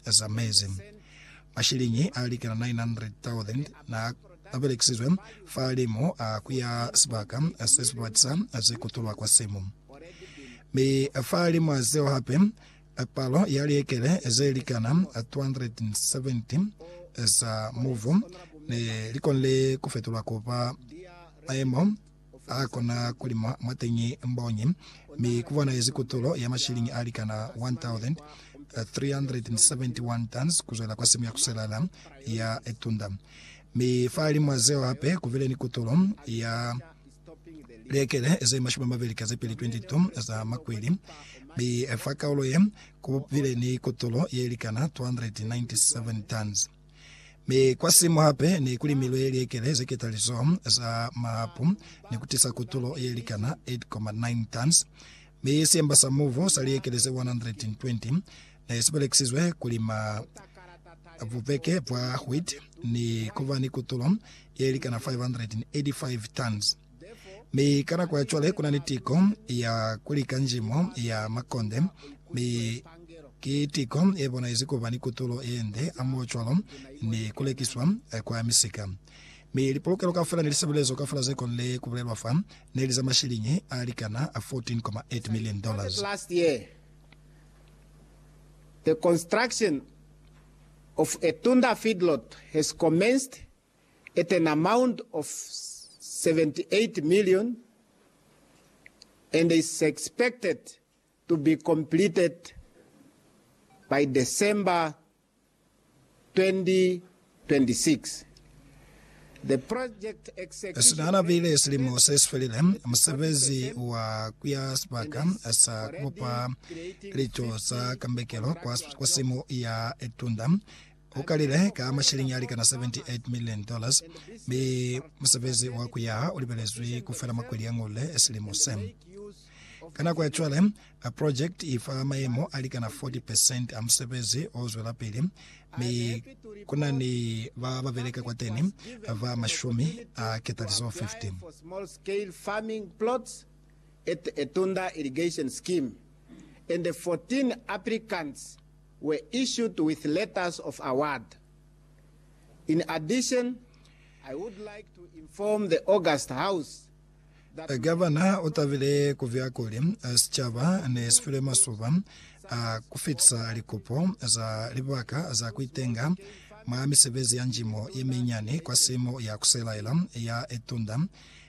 za mezi. Mashilingi a likana 900,000 na a belekisizwe fa limo a kuya sibaka se si batisa ze kutulwa kwa simu. Mi fa limo a zeo hape, palo ya liekele ze likana 270 za muvu ne li konile ku fetulwa ku ba maemo Ha kona ku lima mwateñi mbonyi, mi ku bonahezi kutulo ya mashilingi a likana 1,371 tons ku zwela kwa simu ya kuselala ya Etunda. Mi fahalimw'a zeo hape ku bile ni kutulo ya liekele ze mashumi a mabeli ka ze pili, 22, za makwili, mi fa kaulo ye ku bile ni kutulo ye likana 297 tons. Mi kwa simu hape ne ku limilwe liekele ze ketalizo za mahapu ni ku tisa kutulo ye likana 8,9 tons. Mi siemba sa mubu sa liekele ze 120 ne si belekisizwe ku lima bupeke bwa wheat ni ku ba ni kutulo ye likana 585 tons. Mi ka nako ya cwale kuna ni tiko ya kuli kanjimo ya makonde, mi ki tiko ye bonaizi kuba ni kutulo ye nde hamoho cwalo ni ku lekiswa kwa misika. Mi lipolokelo kaufela ni lisebezezo kaufela ze konile ku bulelwa fa, neli za mashiliñi a likana 14.8 million dollars. at an amount of 78 million and is expected to be completed by December 2026. The project execution Esina hana rate bile silimo se si felile, musebezi wa ku ya sibaka sa ku bopa lico za kambekelo kwa, kwa simo ya tunda Ku kalile ka masheleñi a likana 78 million dollars, mi musebezi wa ku yaha u libelezwi ku fela mwa kweli ya Ngolde silimo se. Ka nako ya cwale, project i fa mayemo a likana 40 percent a musebezi o zwelapili, mi ku na ni ba ba beleka kwateni ba mashumi a ketalizo 15. were issued with letters of award. In addition, I would like to inform the august House that my Gavana o tabile ku via kuli sicaba ne si file masuba a ku fitisa likopo za libaka za ku itenga mwa misebezi ya njimo ye minyani kwa simo ya ku selaela ya Etunda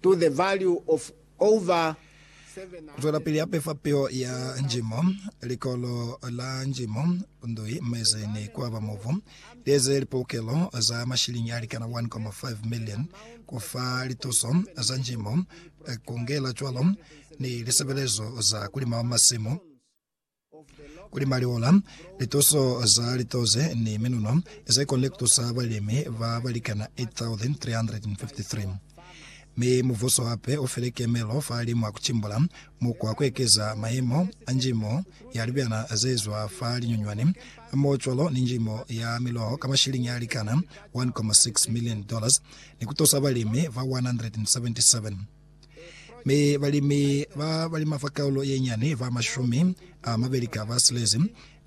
to the value of over seven. Zwelapili ya pefa peo ya njimo, likolo la njimo, ndui, mezi ni kuaba mubu. Lieze lipoukelo za mashilingi alikana 1.5 million kufa lituso za njimo, kungela cwalo ni lisebelezo za kulima masimu. Kuli maliola, lituso za litoze ni minuno ze koni kutusa balimi ba balikana 8,353. Mi mubuso hape ufile kemelo fa limu a kucimbula mukwa kuekeza mayemo a njimo ya libyana zezwa fa linyunywani hamohocwalo ni njimo ya miloho ka mashiliñi alikana 1.6 million dollars ni kutusa balimi ba 177. Mi balimi ba balima fa kaulo ye nyani ba mashumi a mabeli ka ba silezi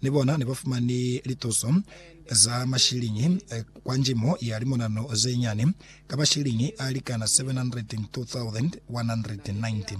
ni bona ne ba fumani lituso za mashiliñi kwa njimo ya limonano ze nyani ka mashiliñi a likana 702,190.